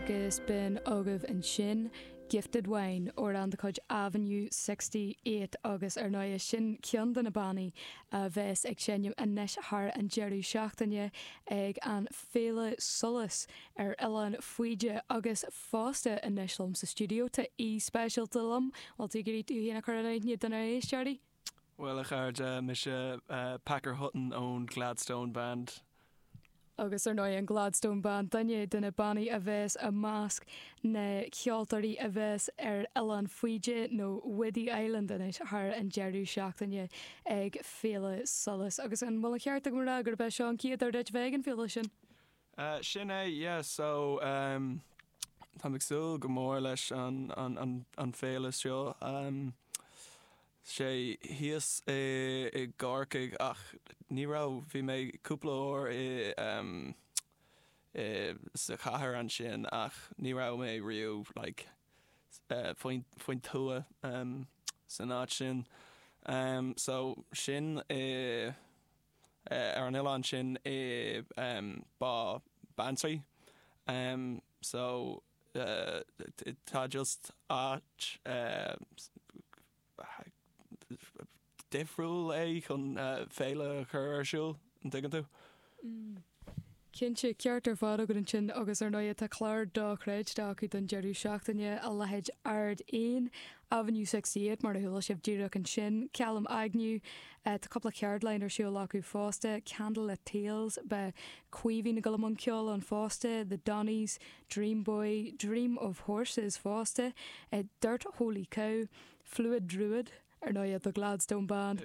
Agus b'in agaibh ansin Gifted Wine, amhrán de chuid Avenue 68 agus ar ndóigh is sin ceann de na bannaí a bheas ag seinm anois thar an deireadh seachtaine ag Féile Solas ar Oileán Faoide agus fosta anois liom sa stiúideo tá aoi speisialta liom, an bhfuil tú ag iarraidh tú féin a chur in aithne do na éisteoirí? Bhuel a chairde, mise Packer Hutton ón Gladstone Band. Agus ar ndóigh an Gladstone Band, duine de na bannaí a bheas i measc na ceoltóirí a bheas ar Oileán Faoide nó Whiddy Island anois thar an deireadh seachtaine ag Féile Solas. Agus an bhfuil an ceart agam a rá gurb é seo an chéad uair duit bheith ag an bhféile sin? Eh, sin é, yeah, so, em, táim ag súil go mór leis an, an, an, an féile seo. Em, sé thíos i, i gCorcaigh ach ní raibh, bhí mé cúpla uair i, em, i, sa chathair ansin ach ní raibh mé riamh, like, eh, faoin, faoin tuath, em, san áit sin. Em, so sin i. ar an oileán sin i Bá Beanntraí so tá, just áit difriúil é chun féile a chur ar siúl an dtuigeann tú. Cinnte, ceart ar fad agat ansin agus ar ndóigh tá clár dochreidte acu don deireadh seachtaine, a leithéid Ard Eoin, Avenue Sixty Eight mar a chuala sibh díreach ansin, ceal im aigne, tá cúpla ceardlann ar siúl acu fosta, Candlelit Tales, beidh Caoimhín ag dul i mbun ceoil ann fosta, The Donnys, Dream Boy, Dream of Horses fosta, Dirt Holy Cow, Fluid Druid, ar ndóigh, The Gladstone Band,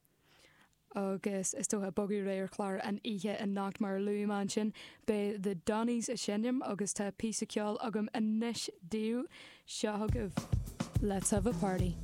agus is dócha bogadh ar aghaidh ar chlár an oíche anocht mar a luaigh mé ansin beidh The Donnys ag seinm agus tá píosa ceoil agam anois daoibh, seo agaibh Let's Have a Party.